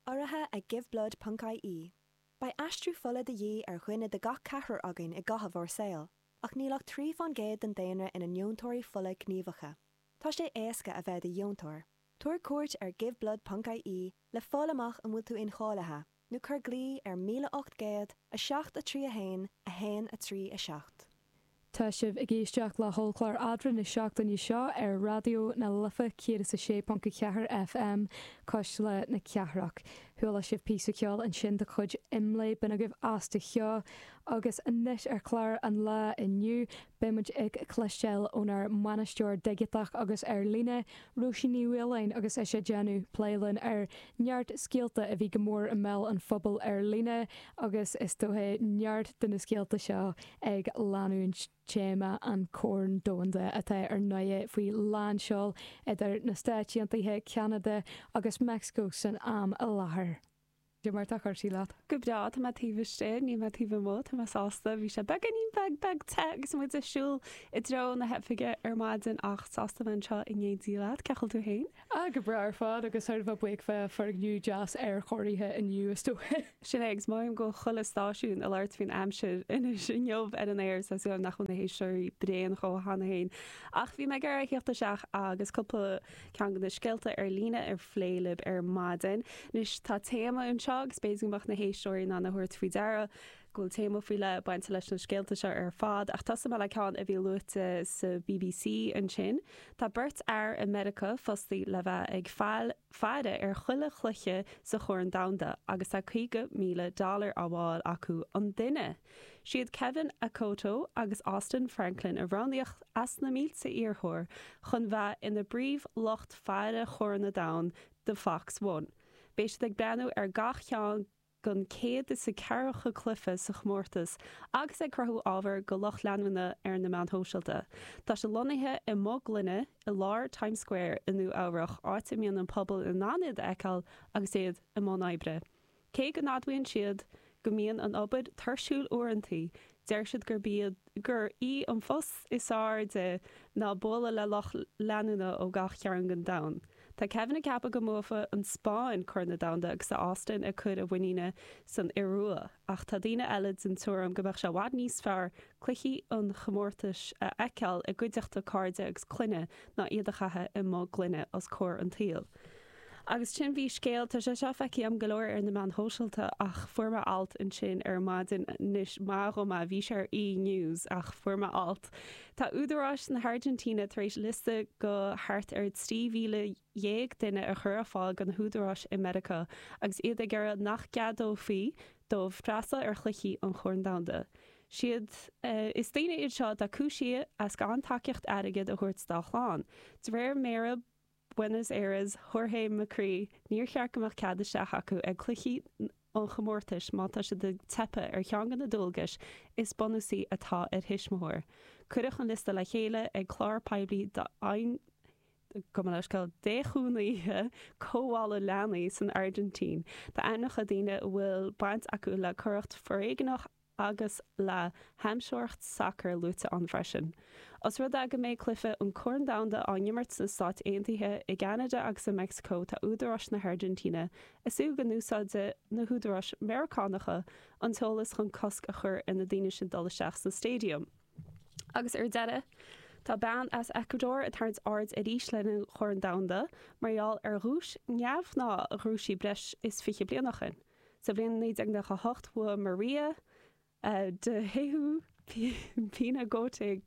urraithe ag Giveblood ponc ie Beidh aistriú fola de dhíth ar dhuine de gach ceathrar againn i gcaitheamh ár saol, ach níl ach trí faoin gcéad den daonra ina ndeontóirí fola gníomhacha. Tá sé éasca a bheith i do dheontóir. Tabhair cuairt ar Giveblood ponc ie le fáil amach an bhfuil tú incháilithe. nó cuir glao ar 1807 3 1 1 3 7. Tá sibh ag éisteacht le hollchlár Eadra na seachtaine seo ar Raidió na Life 106.4 FM coisteála na cathrach. Chuala sibh píosa ceoil ansin de chuid Imlé, Binn agaibh as do sheó agus anois ar chlár an lá inniu, Beidh muid ag cloisteáil ónár mbainisteoir digiteach agus ar líne, Róisín Ní Mhaoláin, agus ise ag déanamh plé linn ar neart scéalta a bhí go mór i mbéal an phobail ar líne agus is dócha neart de na scéalta seo ag leanúint téama an Chorn Domhanda atá ar ndóigh faoi lánseol idir na Stáit Aontaithe, Ceanada agus Meicsiceo san am i láthair. Cé mar tá cúrsaí leat. Go breá, tá mé taobh istigh, níl mé taobh amuigh, tá mé sásta, bhí sé beagáinín beag beag te agus muid ag siúl i dtreo na hoifige ar maidin ach sásta bheith anseo in éindí. leat, cé chaoi bhfuil tú féin? Ah, go breá ar fad agus sórt bheith buíoch bheith i bhfoirgneamh deas aerchóirithe inniu is dócha. Sin é, agus maím go bhfuil chuile stáisiún ag labhairt faoin aimsir anois inniu ar an aer, so tá súil agam nach bhfuil na héisteoirí bréan dó cheana féin. Ach bhí mé ag iarraidh a theacht isteach agus cúpla. Ceann de na scéalta ar líne a phlé libh ar maidin. Anois tá téama anseo agus b'fhéidir go mbeadh na héisteoirí in ann a thabhairt faoi deara go bhfuil téama faoi leith bainte leis na scéalta seo ar fad ach tosóimid le ceann a bhí luaite sa BBC ansin. Tá beirt fhear i Meiriceá fostaí le bheith ag faire ar chuile chluiche sa Chorn Domhanda agus tá 50,000 dollar á bhfáil acu an duine! Is iad Kevin Akoto agus Austin Franklin a roghnaíodh as na mílte iarrthóir chun bheith ina bpríomh lucht faire Chorn na Domhan do Fox One. Beidh siad ag breathnú ar gach ceann gon céad is a ceathracha cluife sa chomórtas agus ag cruthú ábhar go lucht leanúna ar na meáin shóisealta. Tá siad lonnaithe i mboth gloine i lár Times Square i Nua Eabhrach áit a mbíonn an pobal in ann iad a fheiceáil agus iad i mbun oibre. Cé go n-admhaíonn siad go mbíonn an obair tuirsiúil uaireantaí, deir siad gurb iad gurb í an phribhléid is airde ná bualadh le lucht leanúna ó gach cearn den domhan. Tá Kevin ag ceapadh go mbuafaidh an Spáinn Corn an Domhain agus tá Austin ag cur a mhuiníne san Iorua, ach tá daoine eile den tuairim go mbeadh sé i bhfad níos fearr cluichí an chomórtais a fheiceáil i gcuideachta cairde agus clainne ná iad a chaitheamh i mboth gloine os comhair an tsaoil. Agus ansin bhí scéal. Tá sé seo feicthe agam go leor ar na meáin shóisialta ach fuair mé alt ansin ar maidin anois maith dom é, bhí sé ar E! News ach fuair mé alt. Tá údaráis na hAirgintíne tar éis liosta go thart ar 13,000 duine a chur ar fáil go na húdaráis i Meiriceá agus iad ag iarraidh nach gceadófaí dóibh freastal ar chluichí an Chorn Domhanda. Sé sin, is daoine iad seo atá cúisithe as gan tacaíocht airgid a thabhairt dá gclann, de réir mhéara Buenos Aires, Jorge Macri, níor cheart go mbeadh cead isteach acu ag cluichí an chomórtais má tá siad ag teipeadh ar cheann de na dualgais is bunúsaí atá ar thuismitheoir. Cuireadh an liosta le chéile ag clár poiblí d'fhéichiúnaithe cothabhála leanaí san Airgintín tá ainmneacha daoine a bhfuil baint acu le coireacht fhoréigneach agus le hamhsóireacht sacair luaite ann freisin. Os rud é go mbeidh cluichí an Chorn Domhanda á n-imirt sna Stáit Aontaithe, i gCeanada agus i Meicsiceo tá údaráis na hAirgintíne ag súil go n-úsáidfidh na húdaráis Mheiriceánacha an t-eolas chun cosc a chur ar na daoine sin dul isteach sna staidiam. Agus ar deireadh, tá bean as Eacuadór ag tarraingt airde arís le linn an Chorn Domhanda mar gheall ar dhuais neamhghnách a bhuaigh sí breis is fiche bliain ó shin. Sa bhliain 1998 bhuaigh María de Jesús Pinargote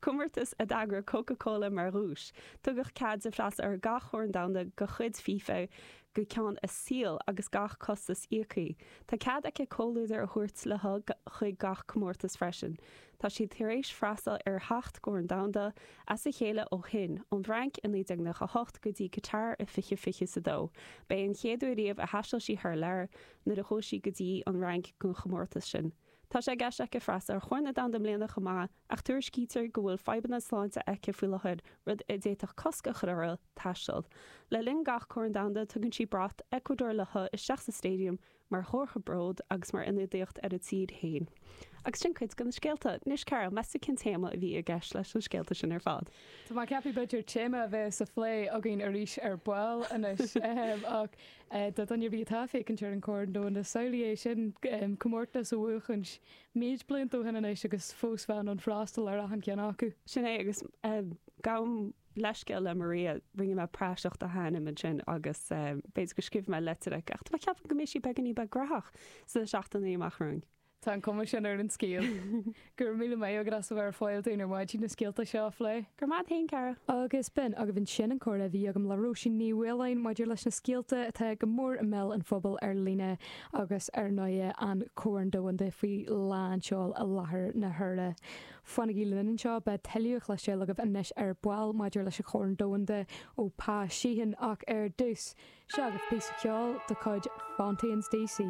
comórtas a d'eagraigh Coca Cola. Mar dhuais tugadh cead di freastal ar gach Corn Domhanda de chuid FIFA go ceann a saoil agus gach costas íoctha. Tá cead aici comhluadar a thabhairt léi chuig gach comórtas freisin. Tá sí tar éis freastal ar sheacht gCorn Domhanda as a chéile ó shin, ón bhFrainc i 1998 go dtí Catar i 2022. Ba í an chéad uair riamh a thaistil sí thar lear nuair a chuaigh sí go dtí an Fhrainc don chomórtas sin. Tá sé i gceist aici freastal ar Chorn Domhanda i mbliana chomh maith ach tuairiscítear go bhfuil fadhbanna sláinte aici faoi láthair, rud a d'fhéadfadh cosc a chur uirthi taisteal. Le linn gach Corn Domhanda tugann sí brat Eacuadór léi isteach sa staidiam, mar chomhartha bróid agus mar ionadaíocht ar a tír féin. Agus sin cuid de na scéalta. Anois, Carol, meas tú cén téama a bhí i gceist leis na scéalta sin ar fad? Tá mé ag ceapadh b'fhéidir téama a bheidh sa phlé againn arís ar ball anois. Ach do dhuine ar bith atá ag féachaint ar an Corn Domhanda, samhlaigh é sin, comórtas a bhuachaint méid blianta ó shin anois agus fós bheith in ann freastal ar achan cheann acu. Sin é, agus gabhaim leithscéal le Maria, rinne mé praiseach dá hainm ansin agus b'fhéidir go scríobhfaidh mé litir chuici, ach tá mé ag ceapadh go mbeidh sí beagán níos graithí sna seachtainí amach romhainn. Tá an cuma sin ar an scéal. Go raibh míle maith agat as a bheith ar fáil dúinn ar maidin na scéalta seo a phlé. Go raibh maith agat féin, Carol. Agus b'in agaibh ansin an comhrá a bhí agam le Róisín Ní Mhaoláin maidir leis na scéalta atá go mór i mbéal an phobail ar líne agus ar ndóigh an Corn Domhanda faoi lánseol i láthair na huaire. Fanaigí linn anseo, beidh tuilleadh le cloisteáil agaibh anois ar ball maidir leis an Chorn Domhanda ó Pa Sheehan ach ar dtús, seo agaibh píosa ceoil de chuid Fontaines D.C.